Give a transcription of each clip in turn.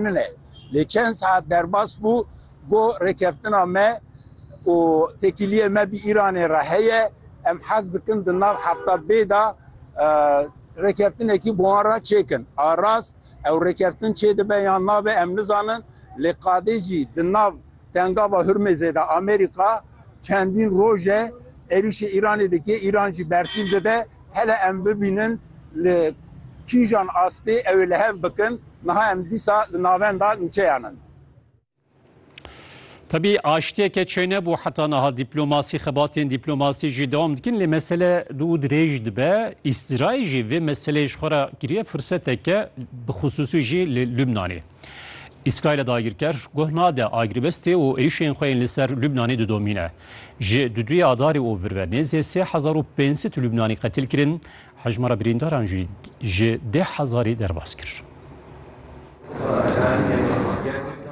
min e. Lê çend saet derbas bû ku rêkeftina me û têkiliyê me bi Îranê re heye, em hez dikin di nav hefta bê de rêkeftinekî bi wan re çêkin. A rast ew rêkeftin çêdibe yan nabe em nizanin, lê qadê jî di nav Tengava Hurmêzê de Amerîka çendîn roj e êrîşê Îranê dike, Îran jî bersîv dide. Hele em bibînin li kîjan astê ew ê li hev bikin, niha em dîsa li navenda nûçeyan in. Tevî aştiyeke çênebû heta niha dîplomasî, xebatên dîplomasî jî dewam dikin lê mesele du û dirêj dibe. Îstirayîl jî vê meseleyê ji xwe re kiriye furseteke bixusûsî jî li Lubnanê. Îsraîlê dagirker guh nade agribestê û êrîşên xwe yên li ser Lubnanê didomîne. Ji du duyê Adarê û vir ve nêzê sê hezar û pênc sed Lubnanî qetil kirin, hejmara birîndaran jî ji deh hezarî derbas kir.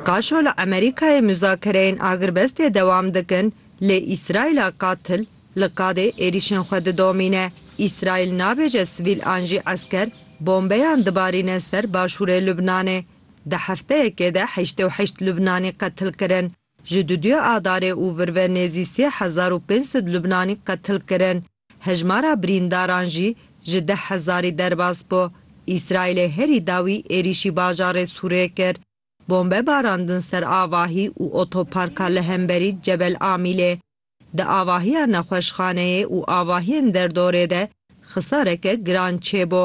Qaşo li Amerîkayê muzakereyên agirbestê dewam dikin, lê Îsraîla qatil Li Qadê êrîşên xwe didomîne. Îsraîl nabêje sivîl an jî esker bombeyan dibarîne ser başûrê Lubnanê. Di hefteyekê de heştê û heşt Lubnanî qetil kirin. Ji duduyê Adarê û vir ve nêzî sê hezar û pênc sed Lubnanî qetil kirin. Hejmara birîndaran jî ji deh hezarî derbas bû. Îsraîlê herî dawî êrîşî bajarê Sûrê kir. Bombe barandin ser avahî û otoparka li hemberî Cebel Amîlê. Di avahiya nexweşxaneyê û avahiyên derdorê de xisareke giran çêbû.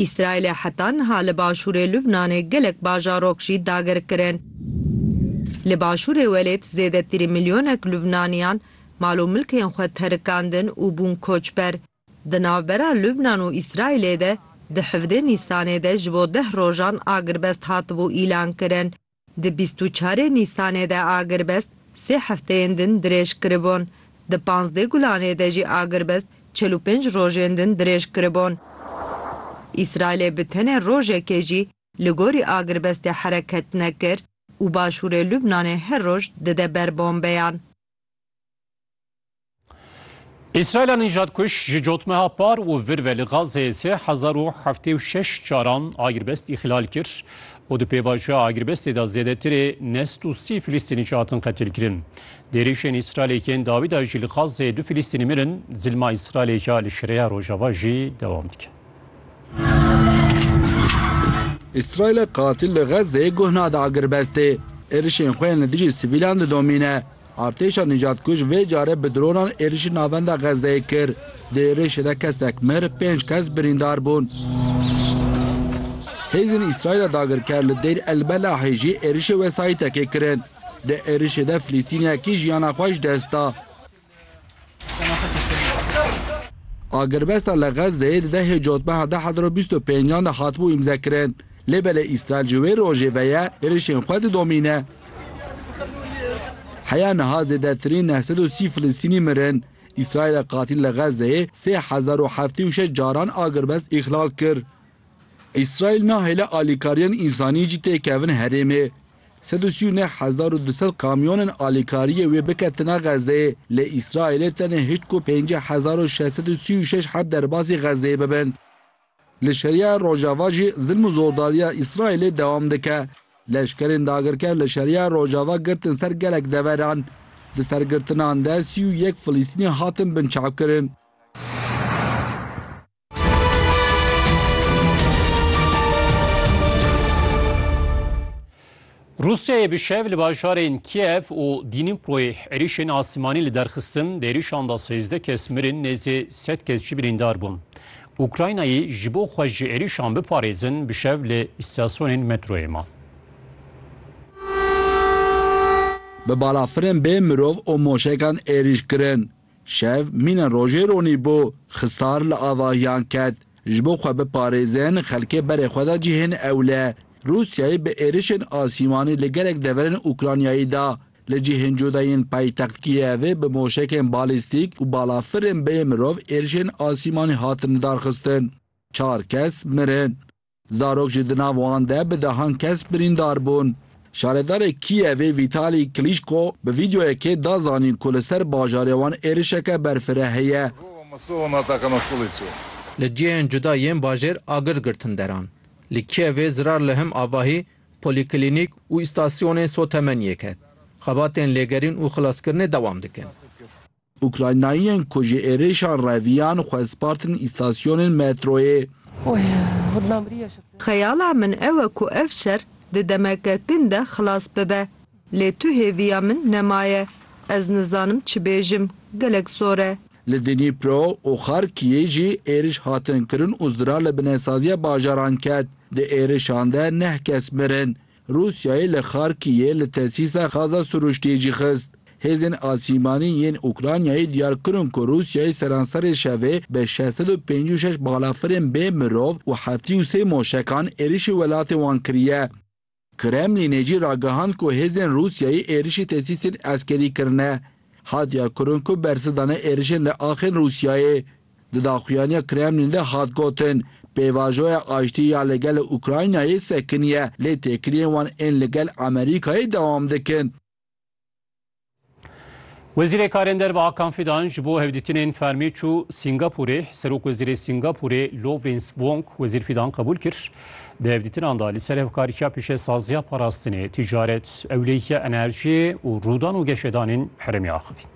Îsraîlê heta niha li başûrê Lubnanê gelek bajarok jî dagir kirin. Li başûrê welêt zêdetirî milyonek Lubnaniyan mal û milkên xwe terikandin û bûn koçber. Di navbera Lubnan û Îsraîlê de di hevdê Nîsanê de ji bo deh rojan agirbest hatibû îlankirin. Di bîst û çarê Nîsanê de agirbest sê hefteyên din dirêj kiribûn. Di panzdeh Gulanê de jî agirbest çel û pênc rojên din dirêj kiribûn. Îsraîlê bi tenê rojekê jî li gorî agirbestê hereket nekir û başûrê Lubnanê her roj dide ber bombeyan. Îsraîla nîjadkuş ji cotmeha par û vir ve li Gazeyê sê hezar û heftê û şeş caran agirbest îxlal kir û di pêvajoya agirbestê de zêdetirê neh sed û sî Filîstînî jî hatin qetilkirin. Di êrîşên Îsraîlê yên dawî de jî li Gazeyê du Filîstînî mirin, zilma Îsraîlê ya li Şirêya Rojava jî dewam dike. Îsraîlê qatil li Xezzeyê guh nade agirbestê, êrişên xwe yên li dijî sivîlan didomîne. Artêşa nîcadkuj vê carê bi dronan êrişî navenda Xezzeyê kir. Di êrişê de kesek mir, pênc kes birîndar bûn. Hêzên Îsraîla dagirker li Dêyr El Belahê jî êrişê wesayîtekê kirin. Di êrişê de Filîstîniyekî jiyana xwe ji dest da. Agirbesta li Xezzeyê di dehê cotmeha du hezar û bîst û pêncan de hatibû îmzekirin. Lê belê Îsraîl ji wê rojê ve ye êrişên xwe didomîne. Heya niha zêdetirîn neh sed û sî Filistînî mirin. Îsraîla qatîl li Xezzeyê sê hezar û heftê û şeş caran agirbest îxlal kir. Îsraîl nahêle alîkariyan însanî jî tê kevin herêmê. Sed û sî û neh hezar û du sed kamyonên alîkariyê wê biketine Xezzeyê, lê Îsraîlê tenê hişt ku pêncî hezar û şeş sed û sî û şeş heb derbasî Xezzeyê bibin. Li Şeriya Rojava jî zilm û zordariya Îsraîlê dewam dike. Leşkerên dagirker li Şeriya Rojava girtin ser gelek deveran. Di sergirtinan de sî û yek Filîstînî hatin binçavkirin. Rûsyayê bi şev li bajarên Kiev û Dînîmproyê êrîşên asîmanî li derxistin, di êrîşan de sêzdeh kes mirin, nêzî sed kes jî birîndar bûn. Ukraynayê ji bo xwe ji êrîşan biparêzin bi şev li îstasyonên metroyê ma. Bi balafirên bê mirov û moşekan êrîş kirin. Şev mîna rojê ronî bû, Xisar li avahiyan ket. Ji bo xwe biparêzin, xelkê berê xwe de cihên ewle. Rûsyayê bi êrişên asîmanî li gelek deverên Ukraynayê de, li cihên cuda yên paytext Kîyevê bi moşekên balîstîk û balafirên bê mirov êrişên asîmanî hatin lidarxistin. Çar kes mirin. Zarok jî di nav wan de bi dehan kes birîndar bûn. Şaredarê Kîyevê Vîtalî Klîşko bi vîdeoyekê da zanîn ku li ser bajarê wan êrişeke berfireh heye. Li cihên cuda yên bajêr agir girtin deran. Li Kîyevê zirar li him avahî polîklînîk û îstasyonên sotemeniyê ket. Xebatên lêgerîn û xilaskirinê dewam dikin. Ukraynayiyên ku ji êrişa reviyan xwezpartin îstasyonên metroyê. Xeyala min ew e ku ev şer di demeke kin de xilas bibe. Lê tu hêviya min nemaye. Ez nizanim çi bêjim. Gelek zor e. Li Dnipro û Xarkiyê jî êriş hatin kirin û zirar li binesaziya bajaran ket. Di êrişan de neh kes mirin. Rûsyayê li Xarkîyê li tesîsa xaza sirûştiyê jî xist. Hêzên asîmanî yên Ukraynayê diyar kirin ku Rûsyayê seranserê şevê bi şeş sed û pêncî û şeş balafirên bê mirov û heftî û sê moşekan êrişî welatê wan kiriye. Kremlînê jî ragihand ku hêzên Rûsyayê êrişî tesîsên eskerî kirine. Hat diyarkirin ku bersiv dane êrişên li axên Rûsyayê. Di daxuyaniya Kremlîn de hat gotin, Pêvajoya aştiyê ya li gel Ukraynayê sekiniye, lê têkiliyên wan ên li gel Amerîkayê dewam dikin. Wezîrê Karên Derve a Kan Fidan ji bo hevdîtinên fermî çû Sîngapûrê. Serokwezîrê Sîngapûrê Lawrence Wong Wezîr Fidan qebûl kir. Di hevdîtinan de li ser hevkariya pîşesaziya parastinê, tîcaret, ewleyiya enerjiyê û rûdan û geşedanên herêmê axivîn.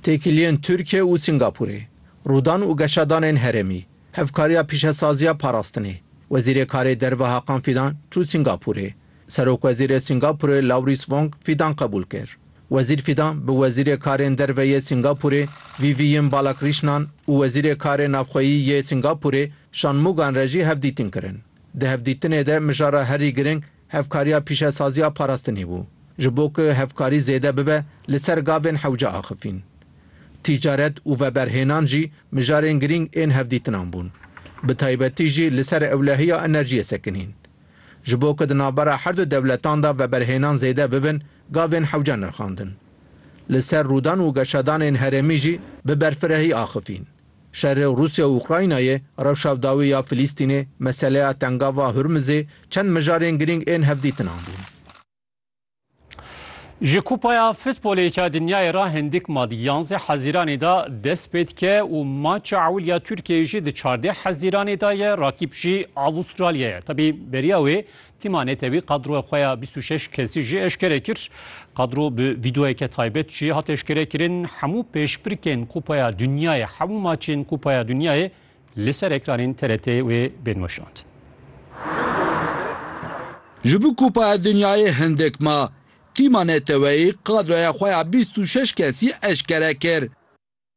Têkiliyên Tirkiye û Singapûrê, rûdan û geşadanên herêmî, hevkariya pîşesaziya parastinê. Wezîrê Karê Derve Hakan Fîdan çû Singapûrê. Serokwezîrê Singapûrê Lawrîs Wong Fîdan qebûl kir. Wezîr Fîdan bi Wezîrê Karên Derve yê Singapûrê Vivian Balakrîşnan û Wezîrê Karê Navxweyî yê Singapûrê Shanmûgan re jî hevdîtin kirin. Di hevdîtinê de mijara herî giring Hevkariya pîşesaziya parastinê bû. Ji bo ku hevkarî zêde bibe li ser gavên hewce axifîn. Tîcaret û veberhênan jî mijarên girîng ên hevdîtinan bûn. Bi taybetî jî li ser ewlehiya enerjiyê sekinîn. Ji bo ku di navbera her du dewletan de veberhênan zêde bibin gavên hewce nirxandin. Li ser rûdan û geşadanên herêmî jî bi berfirehî axifîn. Şerê Rûsya û Ukraynayê, rewşa dawî ya Filîstînê, meseleya Tengava Hurmizê çend mijarên girîng ên hevdîtinan bûn. Ji Kupaya Futbolê ya Dinyayê re hindik ma di yanzdeh Hezîranê de dest pê dike û maça ewil ya Tirkiyeyê jî di çardeh Hezîranê de ye, rakîb jî Avûstralyayê ye. Tevî beriya wê Tîma Netewî qadroya xwe ya bîst û şeş kesî jî eşkere kir. Qadro bi vîdeoyeke taybet jî hat eşkerekirin. Hemû pêşbirkên Kupaya Dunyayê, hemû maçên Kupaya Dunyayê li ser ekranên TRT'ê wê bên weşandin. Ji bo Kupaya Dunyayê hindik ma, Tîma Neteweyî qadroya xwe ya bîst û şeş kesî eşkere kir.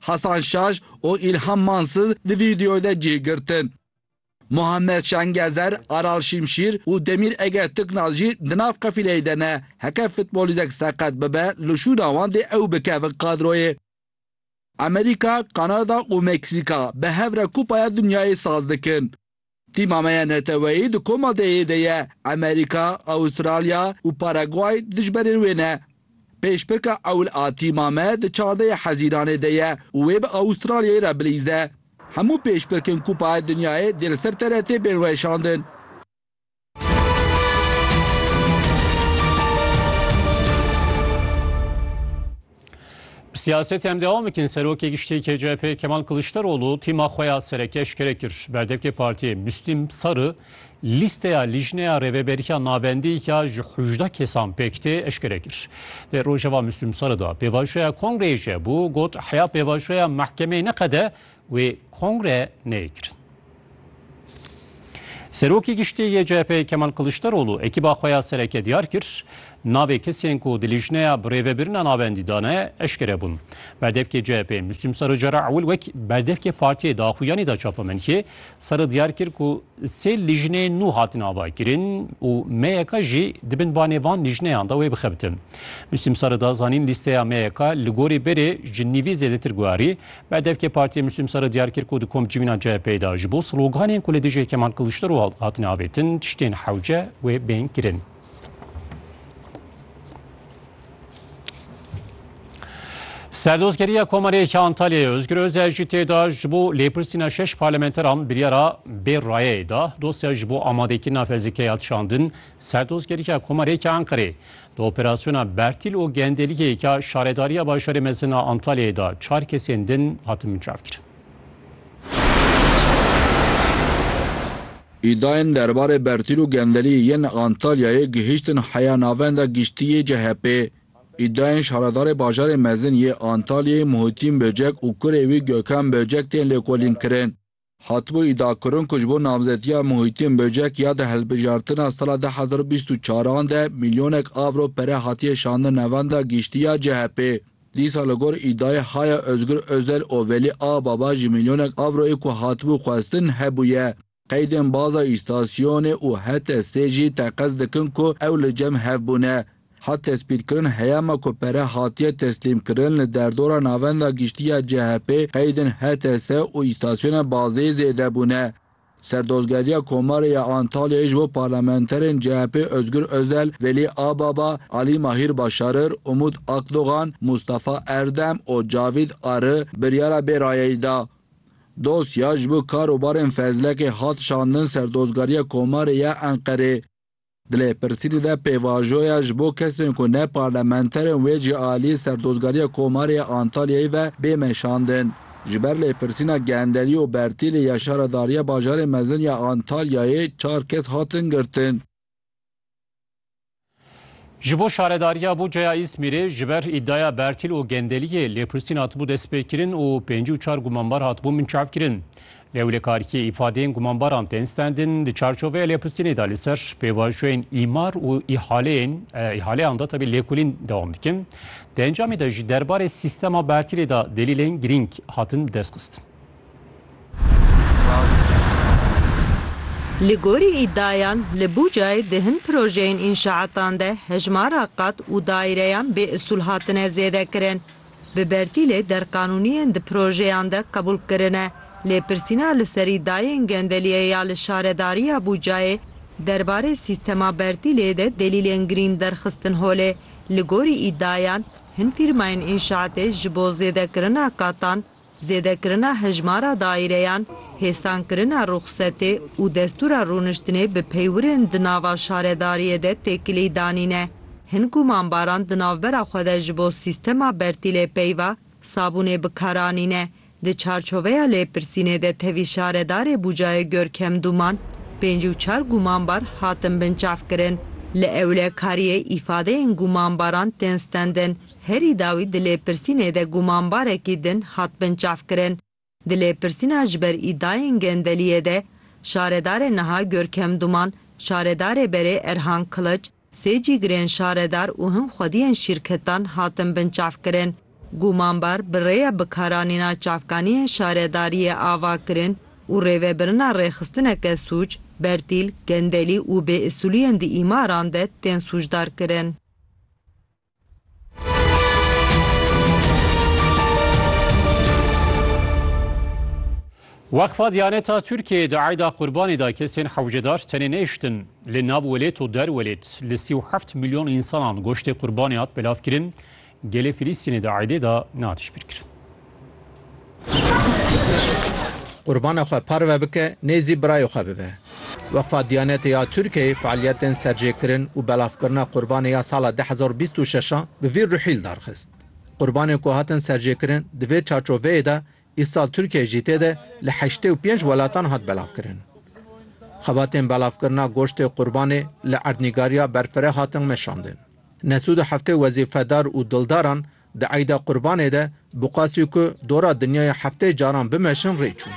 Hasan Şaş û Îlham Mansız di vîdeoyê de cih girtin. Muhammed Şengezer, Aral Şimşîr û Demîr Ege Tiknaz jî di nav qefîleyê de ne. Heke futbolîzek seqet bibe li şûna wan dê ew bikevin kadroyê. Amerîka, Kanada û Meksîka bi hev re Kupaya Dinyayê saz dikin. Tîma me ya neteweyî di koma DE'yê de ye, Amerîka, Awistralya û Paraguay dijberên wê ne. Pêşpirka ewil a tîma me di çardeyê Hezîranê de ye û wê bi Awistralyayê re bilîze. Hemû pêşpirkên Kupaya Dinyayê dê li ser TRT'ê bên weşandin. Siyaset em devam bikin serokê giştî KCP Kemal Kılıçdaroğlu tîma xwe ya sereke eşkere kir. Berdevkê partiyê Müslim Sarı lîsteya lijneya rêveberiya navendî ya ji hûjda kesan pêk tê eşkere kir. Lê rojeva Müslim Sarı da pêvajoya kongreyê jebû got heya pêvajoya mehkemeyê neqede wê kongre neyê kirin. Serokê Giştî yê CHP'ê Kemal Kiliçdaroglu ekîba xwe ya sereke diyar kir, Navê kesên ku di lîjneya birêvebirina navendî de ne eşkere bûn. Berdevkê CHP'ê Muslîm Sarı cara ewil wek berdevkê Partiyê di Axuyanî de çapamenkê Sarı diyar kir ku sê lîjnê nû hatin avakirin û MYK jî di bin banê van lîjneyan de wê bixebitin. Muslîm Sarı da zanîn lîsteya MYK li gorî berê ji nîvî zêdetir guherî Bedevkê Partiyê Muslîm Sere diyar kir ku di kom civîna CHP'ê de ji bo sloganên ku li dijî Kemal Kiliçdaroglu hatine avêtin tiştên hewce wê bên kirin. Serdozgeriya Komarê yek Antalyayê Özgür Özel jî tê de ji bo lêpirsîna şeş parlamenteran biryara bê rayeyê da. Dosya ji bo amadekirina fezlikeya tişandin Serdozgeriya Komarê yek Anqerê. Di operasyona Bertîl û Gendelîyê ke Şaredariya Bajarê Mezin a Antalyayê da çar kesên din hatin mincavkirin. Îdayên derbarê Bertîl û Gendelî yên Antalyayê gihîştin heya Navenda Giştî yê CHP'ê. Îdayên Şaredarê Bajarê Mezin yê Antalyayê Muhîtîn Böcek û kurê wî Gökhan Böcek tên lêkolînkirin. Hatibû îdiakirin ku ji bo namzetiya Muhîtîn Böcek ya di hilbijartina sala du hezar û bîst û çar an de milyonek avro pere hatiye şandin navenda giştî ya CHP'ê. Dîsa li gor îdiayê Haya Ozgur Ozel û Velî Ababa jî milyonek avroyê ku hatibû xwestin hebûye. Qeydên baza îstasyonê û HTS'ê jî teqez dikin ku ew li cem hev bûne. Hat tespîtkirin heyama ku pere hatiye teslîmkirin li derdora Navenda Giştî ya CHP'ê qeydên HTS û îstasyona bazeyê zêde bûne. Serdozgeriya Komarê ya Antalyayê ji bo parlamenterên CHP'ê Ozgur Ozel, Velî Ababa, Alî Mahîr Başarir, Umut Akdogan, Mustafa Erdem û Cavîd Arı biryara bê rayeyî da. Dosya ji bo kar û barên Fezlekê hat şandin Serdozgeriya Komarê ya Enqerê. Di lêpirsînê de pêvajoya ji bo kesên ku ne parlamenter in wê jî aliyê Serdozgariya Komarê ya Antalyayê ve bê meşandin. Ji ber lêpirsîna genderî û bertêlê ya Şaredariya Bajarê Mezin ya Antalyayê çar kes hatin girtin. Ji bo Şaredariya Bucaya Îzmîrê ji ber îdiaya bertîl û gendeliyê lêpirsîn hatibû destpêkirin û pêncî û çar gumanbar hatibûn binçavkirin. Lêwlekarîkê îfadeyên gumanbaran tên stendin di çarçoveya lêpistînê de li ser pêvajoyên îmar û îhaleyên îhaleyan de tevî lêkolîn dewam dikin. Di encamê de jî derbarê sîstema bertîlê de delîlên girîng hatin bi destxistin. Li gorî îddiayan li Bucayê di hin projeyên înşaatan de hejmara qat û daireyan bêusûl hatine zêdekirin. Bi bertîlê derqanûniyên di projeyan de qebûl kirine. Lêpirsîna li serî dayên gendeliyê ya li Şaredariya Bûcayê derbarê sîstema bertîlê de delîlên girîn derxistin holê. Li gorî îdiayan, hin fîrmayên înşaatê ji bo zêdekirina qatan, Zêdekirina hejmara daîreyan, hêsankirina ruxsetê û destûra rûniştinê bi peywirên di nava şaredariyê de têkilî danîne. Hin ku mambaran di navbera xwe de ji bo sîstema bertîlê peyva sabûnê bi kar anîne, di çarçoveya lêpirsînê de tevî şaredarê Bucayê Görkem Dûman pênc û çar gûmanbar hatin binçavkirin. Li ewlekariyê îfadeyên gûmanbaran tên stendin. Herî dawî di lêpirsînê de gumanbarekî din hat binçavkirin. Di lêpirsîna ji ber îdayên gendeliyê de şaredarê niha Görkem Duman, şaredarê berê Erhan Kiliç, sê cîgirên şaredar û hin xwediyên şîrketan hatin binçavkirin. Gumanbar bi rêya bikaranîna çavkaniyên şaredariyê ava kirin û rêvebirina rêxistineke sûc, bertîl, gendelî û bêusûliyên di îmaran de tên sûcdar kirin. Weqfa Diyaneta Tirkiyeyê di eyda Qurbanê de kesên hewcedar tenê nehiştin. Li nav welêt û der welêt li sî û heft milyon însanan goştê Qurbanê hat belavkirin. Gelê Filîstînê di eydê de nehatiş bîrkirin. Qurbana xwe parve bike, nêzî birayê xwe bibe. Weqfa Diyanetê ya Tirkiyeyê fealiyetên serjêkirin û belavkirina qurbanê ya sala du hezar û bîst û şeş a bi vî ruhîl darxist. Qurbanên ku hatin serjêkirin di vê çarçoveyê de îsal Tirkiyeyê jî tê de li heştê û pênc welatan hat belavkirin. Xebatên belavkirina goştê qurbanê li erdnîgariya berfireh hatin meşandin. Ne sûd û heftê wezîfedar û dildaran Di Eyda Qurbanê de bi qasî ku dora dinyaya heftê caran bimeşin rê çûn.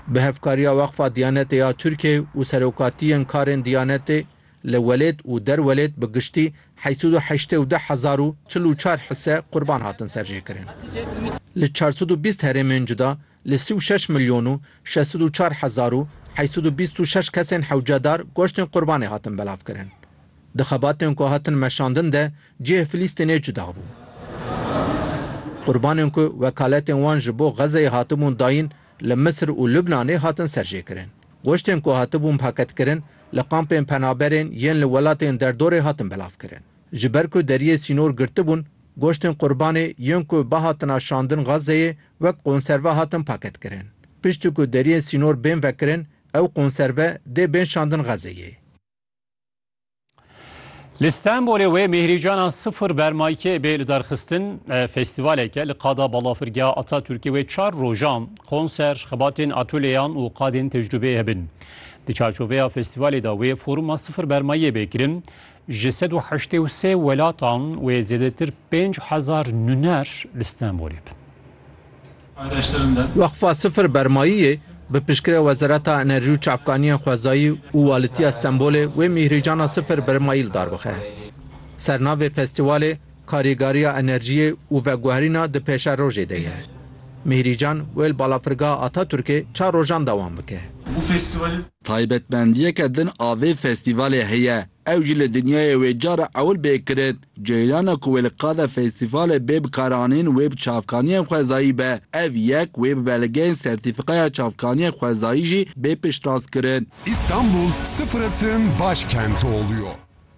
Bi hevkariya Weqfa Diyanetê ya Tirkiyeyê û Serokatiyên Karên Diyanetê li welêt û derwelêt bi giştî heşt sed û heştê û du hezar û çil û çar hise qurban hatin serjêkirin. Li çar sed û bîst herêmên cuda Li sî û şeş milyon û şeş sed û çar hezar û heyt sed û bîst û şeş kesên hewcedar goştên qurbanê hatin belavkirin. Di xebatên ku hatin meşandin de cihê Filîstînê cuda bû. Qurbanên ku wekaletên wan ji bo Xezeyê hatibûn dayîn li Misir û Lubnanê hatin serjêkirin. Goştên ku hatibûn paketkirin li kampên penaberên yên li welatên derdorê hatin belavkirin. Ji ber ku deriyê sînor girtibûn, Goştên qurbanê yên ku bihatina şandin Gazeyê wek konserve hatin paketkirin. Piştî ku deriyên sînor bên vekirin, ew konserve dê bên şandin Gazeyê. Li Stenbolê wê Mêhrîcana Sifir Bermaykê bê lidarxistin, festîvalek e li qada balafirgeha Atatürkê wê çar rojan konser, xebatên atolyeyan û qadên tecrûbeyê hebin. Di çarçoveya festîvalê de wê foruma Sifir Bermayiyê bê kirin, Ji sed û heştê û sê welatan wê zêdetir pênc hezar nûner li Stenbolê bin. Weqfa Sifir Bermayiyê bi piştgirê Wezareta Enerjî û Çavkaniyên Xwezayî û Walitiya Stenbolê wê mîhrîcana Sifir Bermayî li dar bixe. Sernavê festîwalê Karîgariya enerjiyê û veguherîna di pêşerojê de ye. Mîhrîcan wê li Balafirgeha Ataturkê çar rojan dewam bike. Taybetmendiyeke din a vê festîvalê heye, ew jî li dinyayê wê cara ewil bê kirin. Ceyrana ku wê li qada festîvalê bê bi karanîn wê bi çavkaniyên xwezayî be. Ev yek wê bi belgeyên sertîfîkaya çavkaniyên xwezayî jî bê piştrast kirin. Istanbul sıfıratın başkenti oluyor.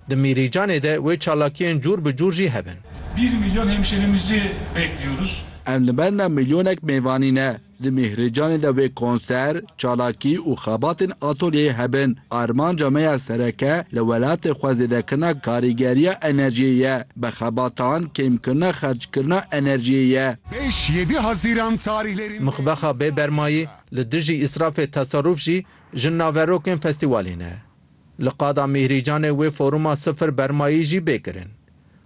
Di Mîrîcanê de wê çalakiyên cûr bi cûr jî hebin. Bir milyon hemşerimizi bekliyoruz. Em li benda milyonek mêvanî ne. Di Mîhrîcanê de wê konser, çalakî û xebatên atolyeyê hebin. Armanca me ya sereke li welatê xwe zêdekirina karîgeriya enerjiyê ye. Bi xebatan kêmkirina xerckirina enerjiyê ye. Beş, yedi Haziran tarihlerinde Mixbexa Bêbermayî, Li dijî îsrafê Teserruf jî ji naverokên festîwalê ne. Li qada Mîhrîcanê wê foruma sifir bermayî jî bê kirin.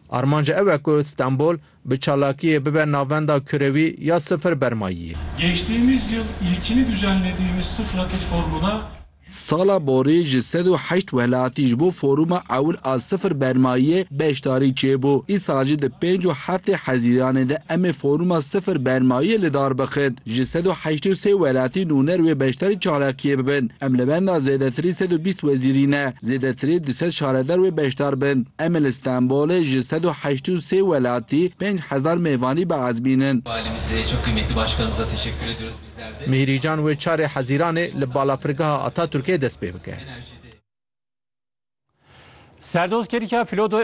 Armanc ew e ku Stenbol bi çalakiyê bibe navenda kurewî ya sifir bermayiyê. Geçtîmiz yil îlkini ducendidîmiz sifra til formuna. Sala borî ji sed û heşt welatî ji bo foruma ewil a sifir bermayiyê beşdarî çêbû. Îsal jî di pênc û heftê hezîranê de emê foruma sifir bermayiyê lidar bixin. Ji sed û heşt û sê welatî nûner wê beşdarî çalakiyê bibin. Em li benda zêdetirî sed û bîst wezîrî ne, zêdetirî du sed şaredar wê beşdar bin. Em ê li Stenbolê ji sed û heşt û sê welatî pênc hezar mêvanî biazmînin. Mîhrîcan wê çarê Hezîranê li Balafirgeha Atatürkê dest pê bike. Serdoz Kerika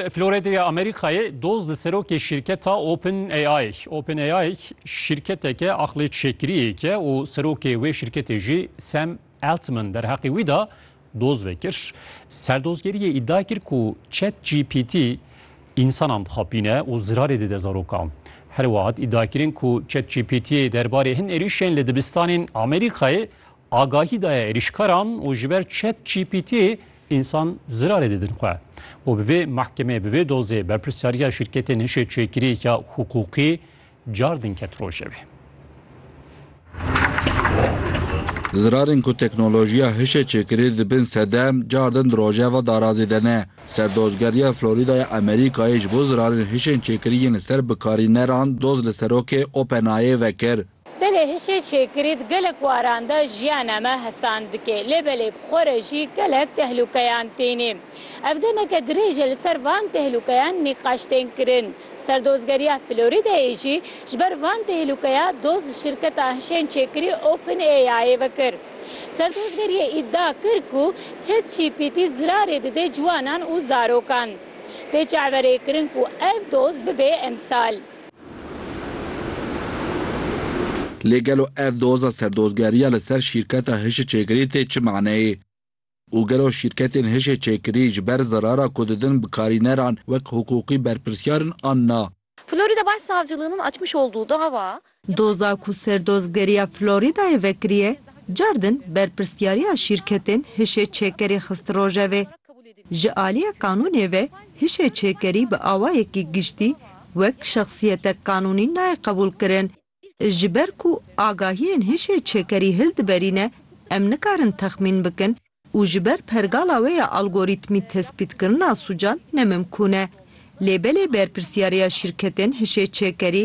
Floredê ya Amerîkayê doz li serokê şîrketa Open AI. Open AI şîrketeke aqlê çêkiriyêke û serokê wê şîrketê jî Sam Altman derheqê wî de doz vekir. Serdozgeriyê îdia kir ku ChatGPT însanan dixapîne û zirarê dide zarokan. Herwiha hat îdiakirin ku ChatGPT'ê derbarê hin êrîşên li dibistanên Amerîkayê Agahî daye êrîşkaran û ji ber ChatGPT însan zirarê didin xwe. Û bi vê mahkemê, bi vê dozê berpirsyariya şîrketên hişê çêkirî ya hiqûqî car din ket rojevê. Zirarên ku teknolojiya hişê çêkirî dibin sedem, car din di rojeva darazê de ne. Serdozgeriya Florîda ya Amerîkayê ji bo zirarên hişên çêkirî yên li ser bikarîneran doz li serokê OpenAI'ê vekir. Belê hişê çêkirî di gelek waran de jiyana me hesan dike, lê belê bi xwe re jî gelek tehlûkeyan têne. Ev demeke dirêj e li ser van tehlûkeyan nîqaş tên kirin. Serdozgeriya Florîdayê jî ji ber van tehlûkeya doz li şirketa hişên çêkirî OpenAI'ê vekir. Serdozgeriyê îdia kir ku ChatGPT zirarê dide ciwanan û zarokan. Tê çaverêkirin ku ev doz bibe emsal. Lê gelo ev doza serdozgeriya li ser şîrketa hişê-çêkirî tê çi maneyê? Û gelo şîrketên hişê-çêkirî ji ber zerara ku didin bikarîneran wek hiqûqî berpirsyar in an na? Florida Başsavcılığı'nın açmış olduğu dava, Doza ku Serdozgeriya Floridayê vekiriye, car din berpirsyariya şîrketên hişê-çêkerî xisti rojevê. Ji aliyê qanûnê ve hişê çêkerî bi awayekî giştî wek şexsiyetek qanûnî nayê qebûlkirin. Ji ber ku agahiyên hişê çêkerî hil diberîne, em nikarin texmîn bikin û ji ber pergala wê ya algorîtmî tespîtkirina sûcan nemimkûn e. Lê belê berpirsyariya şîrketên hişê çêkerî